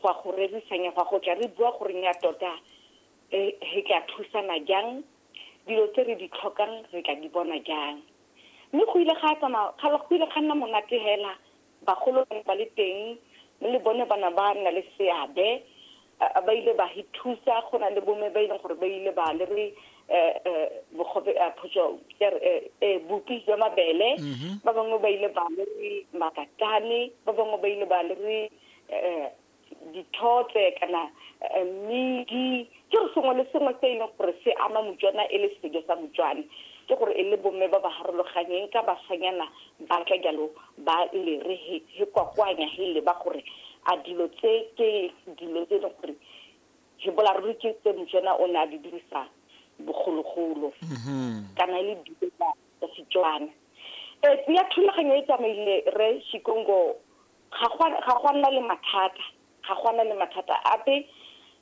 go a go rerisanya go a go tla re bua gore nya tota eh, re tla thusana jang dilo tse re di tlhokang re tla di bona jang mme go ile ga tsamaya ga go ile ga nna monate hela bagolo ba ne ba le teng mme le bone bana ba nna le seabe a- a ba ile ba hi thusa go na le bomme ba e leng gore ba ile ba le re bogobe a photso e bupi jwa mabele mhm. ba bangwe ba ile ba le makatane ba bangwe ba ile ba le dithotse kana eh, mmidi ke re sengwe le sengwe se e leng gore se ama motswana e le sejo sa motswane ke gore e le bomme ba ba harologanyeng ka basanyana ba tla jalo ba lere he kwakwanya he leba gore a dilo tse ke dilo tse e leng gore Re bolaruri ke tse Motswana o ne a di dirisa bogologolo kana e le dijo tsa tsa Setswana. E tseya thulaganyo e tsamaile re Shikongo ga gwa ga gwa nna le mathata, ga gwa nna le mathata ape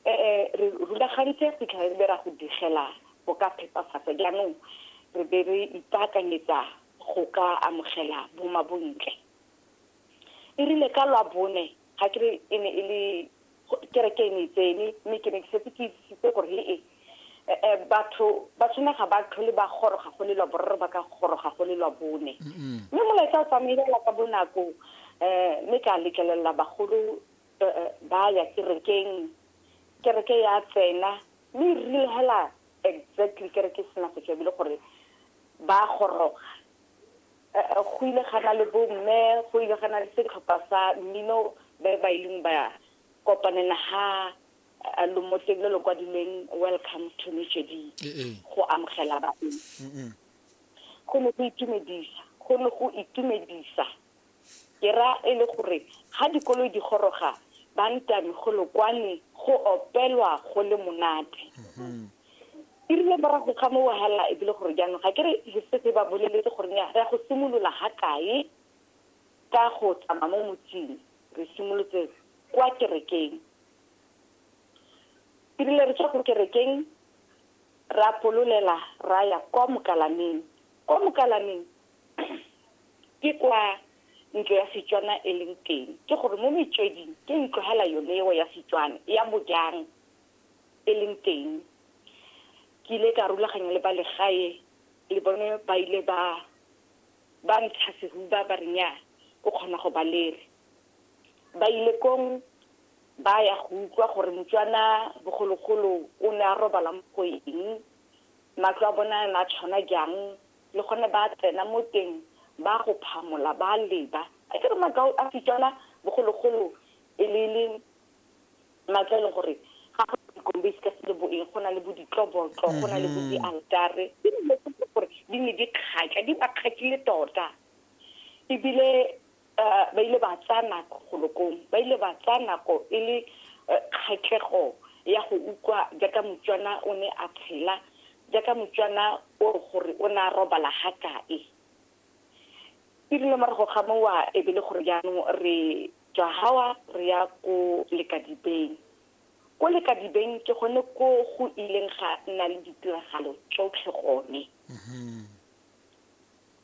eh re rulagantse go fitlhela re be ra go digela go ka phepafatsa jaanong re be re ipaakanyetsa go ka amogela bomabontle. E rile ka lwa bone ga ke re e ne e le kereke e ne e tsene mme ke ne ke setse ke itsisitse gore le e eh, eh, batho ba tshwana ga ba tlhole ba goroga go lelwa boraro ba ka goroga go lelwa bone mme molaetsa o tsamaelela ka bonako um mme ka letlelela bagolo eh, ba ya kerekeng kereke ya tsena mme e rile hela exactly kereke e sena go tswa ebile gore ba goroga go ile ga na le bomme go ile ga na le setlhopha sa mmino ba ba ileng ba kopanela ha lomotleng le le kwadileng welcome to mejedi go amogela baeng go ne go itumedisa go ne go itumedisa ke ra e le gore ga dikoloi di goroga ba ntame go lokwane go opelwa go le monate e rile morago ga moo hela e bile gore jaanong ga ke re le setse ba boleletse gore ne ya go simolola ga kae ka go tsamaya mo motsing re simolotse kwa kerekeng e rile re tswa ko kerekeng ra pololela ra ya kwa mokalameng kwa mokalameng ke kwa ntlo ya setswana e leng teng ke gore mo metsweding ke ntlo hela yone eo ya setswana ya bojang e leng teng ke ile ka rulaganya le ba legae le bone ba ile ba ba ntsha sehuba ba re nya o kgona go ba lere ba ile kong ba ya go utlwa gore motswana bogologolo o ne a robala mo go eng matlo a bona a tshwana jang le gone ba tsena mo teng ba go phamola ba leba a ke re makao a setswana bogologolo e le le matlo a e leng gore ga go dikombe se ka se le boeng go na le bo ditlobotlo go na le bo dialtare ke dilo tse ke gore di ne di kgatla di ba kgatlile tota ebile um ba ile ba tsaya nako golokong ba ile ba tsaya nako e le eh, kgatlhego ya go utlwa jaaka motswana o ne a tshela jaaka motswana o gore o ne a robala ga kae Erile morago ga mowa e be le gore jaanong re tswa hawa re ya ko Lekadibeng. Ko Lekadibeng ke gone ko go ileng ga nna le ditiragalo tsotlhe gone.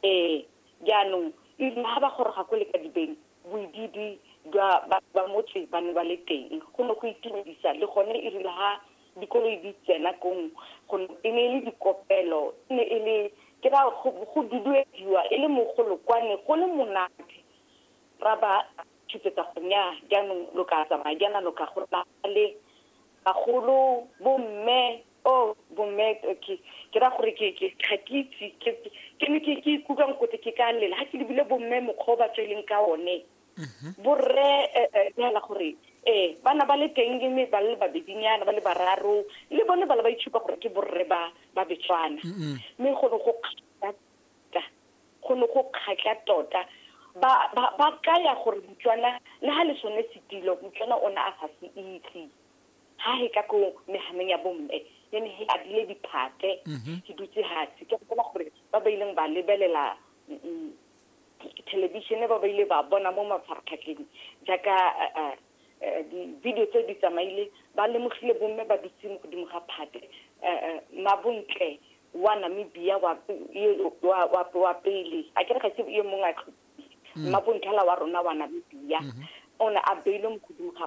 Ee, jaanong erile ha ba goroga ko Lekadibeng boidiidi jwa ba motse ba ne ba le teng go ne go itumedisa le gone erile ha dikoloi di tsena kong go e ne e le dikopelo e ne e le ke ra go duduediwa e le mogolo kwane go le monate ra ba tshupetsa go nya jaanong lo ka tsamaya jaana lo ka go le bagolo bomme o oh, bomme ke ke ra gore ke ke ga ke itse ke ne ke ikutlwang kote ke ka lela ga ke lebile bomme mokgwa o ba tsweleng ka one mhm. borre eh, eh, neela gore ee bana ba le teng le me ba le babedinyana ba le bararo le bone bala ba itshupa gore ke borre ba ba betswana mme go ne go kgatla tota go ne go kgatla tota ba ba ba kaya gore motswana le ha le sone setilo motswana o ne a sa se itse ha he ka ko mehameng ya bomme ne ne he a dile diphate ke dutse hatsi ke go bona gore ba ba ileng ba lebelela thelebišene ba ba ile ba bona mo mafaratlhatlheng jaaka di-video tse di tsamaile ba lemogile bomme ba dutse mo godimo ga phate mabontle wa namibia wa pele a kere ga se yo mongwe a tlhophile mmabontlhala wa rona wa namibia o ne a beilwe mo godimo ga